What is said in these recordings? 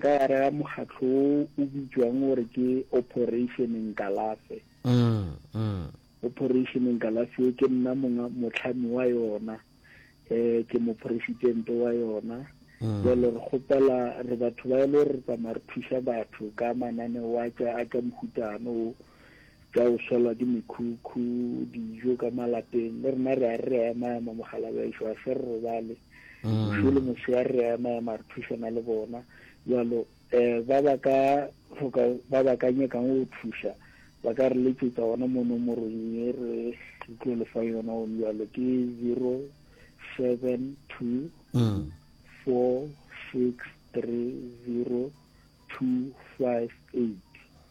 Ka gare ga mokgatlo wo o bitšwang gore ke Operation Nkalafe. Operation Nkalafe wo ke nna monga motlhami wa yona, um ke moporesidente wa yona. Jalo re kgopela re batho ba e le gore re tsamaya re thuša batho ka mananeo a tša a tša mohutano wo, tša go swelwa ke mekhukhu, dijo ka malapeng. Le rena re a re re a ema-ema mogala bešo, a se re robale. Bošo mm. le moshe a re re a ema-ema re thušana le bona. Jalo um ba ba ka hloka ba ba ka nyakang go thuša ba ka re letšetsa gona mo nomorong ye re tlo le fa yona gone jalo ke zero seven two mm. four six three zero two five eight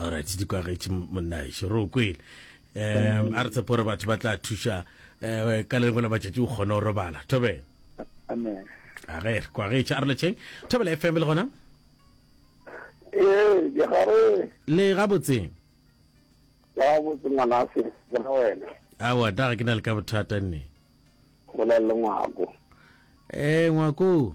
alright di kwagetše monnaešo re o kwele um a re tshepo gore batho ba tla thuša um ka le lengwe la matšatši o kgone go robala thobela amen a ge re kwagetše a re letšheng thobela fm le gona ee ke gare le gabotseng gabotse ngwana se ke na wena awa da ga ke na le ka bothata nne gola le ngwako ee ngwako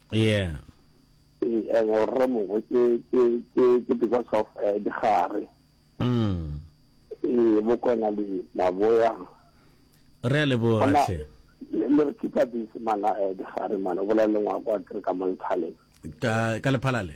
yeah eh, and o rre mongwe ke ke ke ke because of eh, digare mm eh bokona le maboya re a leboga Bona, hle le le re keepa busy mana eh, digare mana o bolela le ngwako a kere ka monthale ka ka lephalale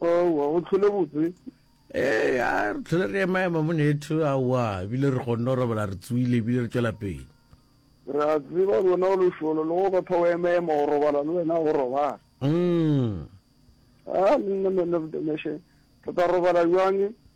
owa o tlhole botse ee a re tlhole re emaema monetho aowa ebile re kgonne go robala re tsoile ebile re tswela pele re a tseba le wena o lešolo le go batho o emaema go robala le wena go robala mm. a nna man of the nation re tla robala jwange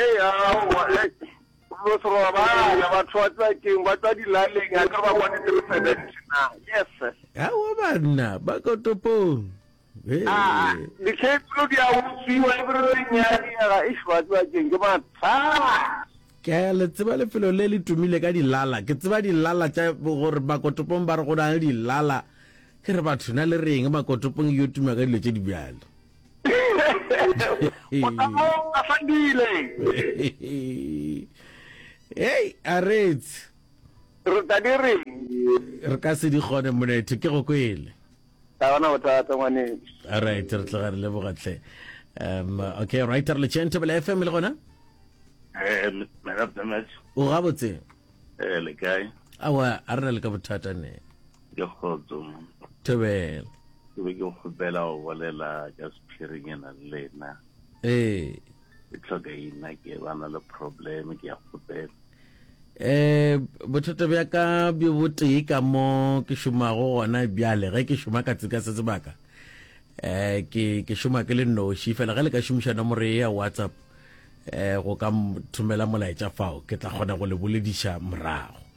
Ee, aowa, hei, lo se robala, batho ba tswa keng, ba tswa dilaleng, a ka ba bone three seventy na, yes sir. Aowa banna, ba ko topong. Aa, ah, ah, dikhetlo di a utswiwa, e bere re nyadiega, eish, ba tswa keng, ke mathata. Ke a le tseba lefelo le le tumile ka dilala, ke tseba dilala tša gore makotopong ba re go na le dilala, ke re batho na le reng makotopong yo tuma ka dilo tše di bjalo. Motamo a fandile. Hey, aretse. Re tla di re. Re ka se di gone monetho ke go kwele. Ga bona bothata ngwane. All right, re tla re leboga tle. Um okay, right re le chente bele FM le gona? Eh, me rap damage. O gabotse. Eh, le kae? Awa, a re le ka bothata ne. Ke kgotso mma. Thobela. Ke be ke kgopela go bolela ka sephiring e nang le ena. Ee. Ke tlhoka ina ke ba na le problem ke ya kgopela. Eh bothata bja ka bjo botee ka mo ke šomago gona bjale ge ke šoma ka tsika se sebaka eh ke ke šoma ke le noši fela ge le ka šomiša nomoro ya whatsapp eh go ka thomela molaetša fao ke tla kgona go le bolediša morago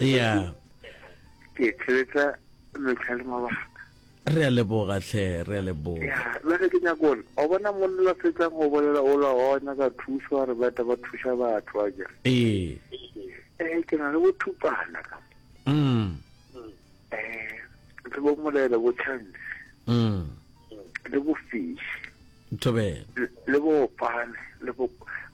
ya ke tsheletsa mehla le mabaka re a leboga tlhe re a leboga le ge ke nyako one o bona monna la fetsang go bolela o la o nyaka thuso a re beta ba thusa batho a jere ee ee ke na le bothupana ka mm ee ke bo molela bo chance mm le bo fish tobe le bo opane le bo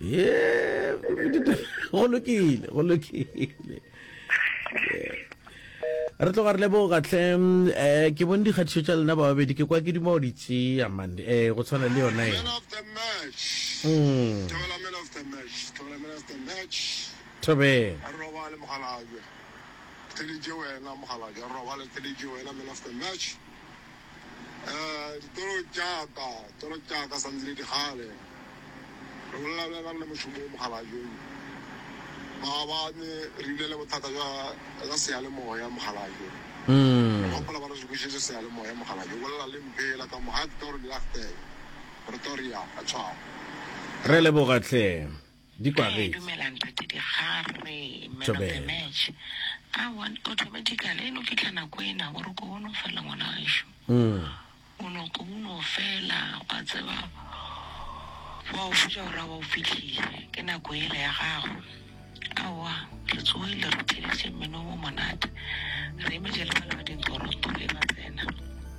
ye go lokile go lokile re tloga re leboga tlhe um eh, ke bone dikgatišo tša lena ba babedi ke kwa ke duma o di tšea mane um eh, go tshwana le yona e thobeng Eh, ditoro tšaka, toro tšaka sa ntse di di kgale. Re bolela bjang ka le mošomo wo mokgalajong? Maabane re bile le bothata bja bja seyalemoya mokgalajo. Re gopola ba re sokišetše seyalemoya mokgalajo. Bolela le mphela ka mo, ha ke toro di lachtele. Pretoria, ka tshwao. Re leboga hle. Di kwagetse. Dumelang Tate Digare, man of the match. Aowa, automatically e no fitlha nako ena gore ko o no fela ngwana gaešo. O no ko o no fela wa tseba wa o fetša gore a wa o fitlhile ke nako ele ya gago. Aowa, re tsogile re theeditše mmino o monate re emetše le bana ba dinkgoroto e ba tsena.